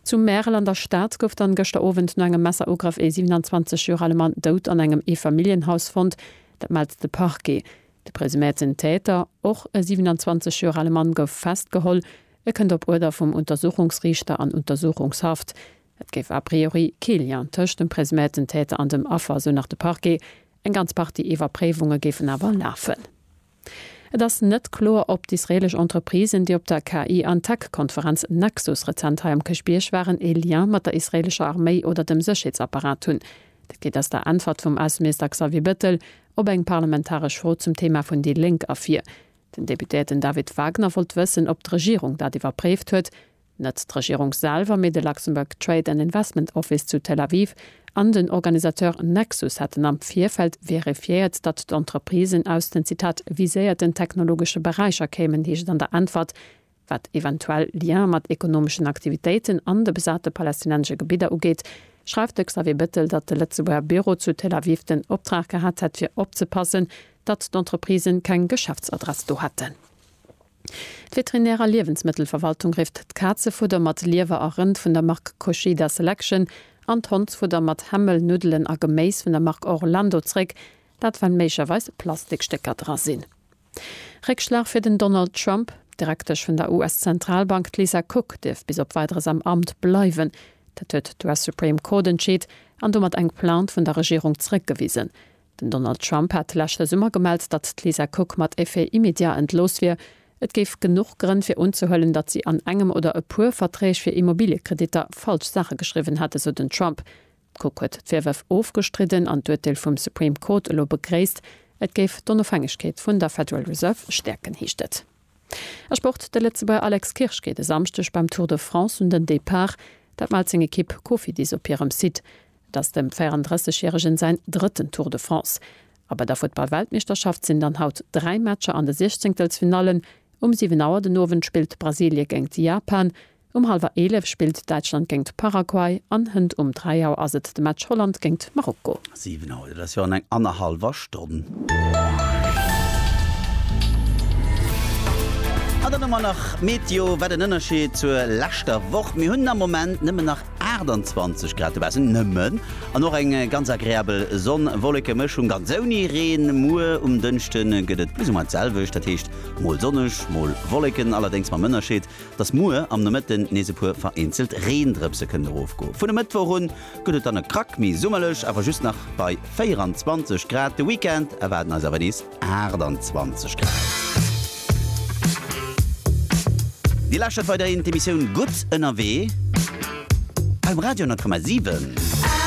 Zu Märel an der Stad gouf dann gëschter Owend no engem Messerugrëff ee 27 Joer ale Mann dout an engem Eefamilljenhaus fonnt. Dat mellt de Parquet. De presuméierten Täter, och e 27 Joer ale Mann, gouf festgeholl. E kënnt op Uerder vum Untersuchungsriichter an Untersuchungshaft. Et géif a priori kee Lien tëscht dem presuméierten Täter an dem Affer, esou nach de Parquet. Eng ganz Partie Iwwerpréiwunge géifen awer lafen. Et ass net kloer, ob d'israelesch Entreprisen, déi op der KI an Tech-Konferenz Nexus rezent hei am Kirchbierg waren, ee Lien mat der israelescher Arméi oder dem Sécherheetsapparat hunn. Dat geet aus der Äntwert vum Ausseminister Xavier Bettel op eng parlamentaresch Fro zum Thema vun déi Lénk ervir. Den Deputéierten David Wagner wollt wëssen, ob d'Regierung dat iwwerpréift huet, Net d'Regierung selwer, mee de Luxembourg Trade and Investment Office zu Tel Aviv an den Organisateur Nexus hätten am Virfeld verifiéiert, datt d'Entreprisen aus den, Zitat, viséierten technologesche Beräicher kéimen, heescht et an der Äntwert, Wat eventuell Liene mat ekonomeschen Aktivitéiten an de besate palästinensesche Gebidder ugeet, schreift de Xavier Bettel, datt de Lëtzebuerger Büro zu Tel Aviv den Optrag gehat hätt, fir opzepassen, datt d'Entreprisen keng Geschäftsadress do hätten. D'Veterinär a Liewensmëttelverwaltung rifft d'Kazefudder mat Liewer a Rënd vun der Mark Kochida Selection an d'Hondsfudder mat Hämmel, Nuddelen a Geméis vun der Mark Orlando zréck, dat well méiglecherweis Plastikstécker dra sinn. Réckschlag fir den Donald Trump, D'Direktesch vun der US-Zentralbank, d'Lisa Cook, dierf bis op Weideres am Amt bleiwen. Dat huet d'US-Supreme Court entscheet an domat eng Plainte vun der Regierung zréckgewisen. Den Donald Trump hat leschte Summer gemellt, datt d'Lisa Cook mat Effet immédiat entlooss wier. Et géif genuch Grënn fir unzehuelen, datt si an engem oder e puer Verträg fir Immobiliekreditter falsch Saache geschriwwen hätt, esou den Trump. D'Cook huet d'Virwërf ofgestridden an d'Urteel vum Supreme Court elo begréisst. Et géif d'Onofhängegkeet vun der Federal Reserve stäerken, heescht et. A Sport, De Lëtzebuerger Alex Kirsch geet e Samschdeg beim Tour de France un den Depart. Dat mellt seng Ekipp Cofidis op hirem Site. Et ass dem 34 järegen säin drëtten Tour de France. A bei der Futtball-Weltmeeschterschaft sinn dann haut dräi Matcher an de Siechzéngtelsfinallen. Um 7 Auer den Owend spillt Brasilie géingt Japan. Um hallwer 11 spillt Däitschland géingt Paraguay an hënt um 3 Auer ass et de Match Holland géingt Marokko. 7 Auer, dat ass jo an eng annerhallwer Stonn. An dann hu mer nach d'Meteo. Wat en Ënnerscheed zur leschter Woch. Mir hunn am Moment nëmmen nach 28 Grad, dobaussen nëmmen, an och eng ganz agreabel Sonn-Wolleke-Mëschung, ganz ouni Reen. Muer um Dënschde gëtt et plus ou moins d'selwecht, dat heescht mol sonneg, mol Wolleken, allerdéngs mam Ënnerscheed, dass muer am Nomëtten nees e puer vereenzelt Reendrëpse kënnen erofgoen. Vun e Mëttwoch un gëtt et dann e Krack méi summerlech, awer just nach bei 24 Grad. De Weekend erwaarden eis awer nees 28 Grad. Dir lauschtert weiderhin d'Emissioun Gutt ënnerwee beim Radio 10,7.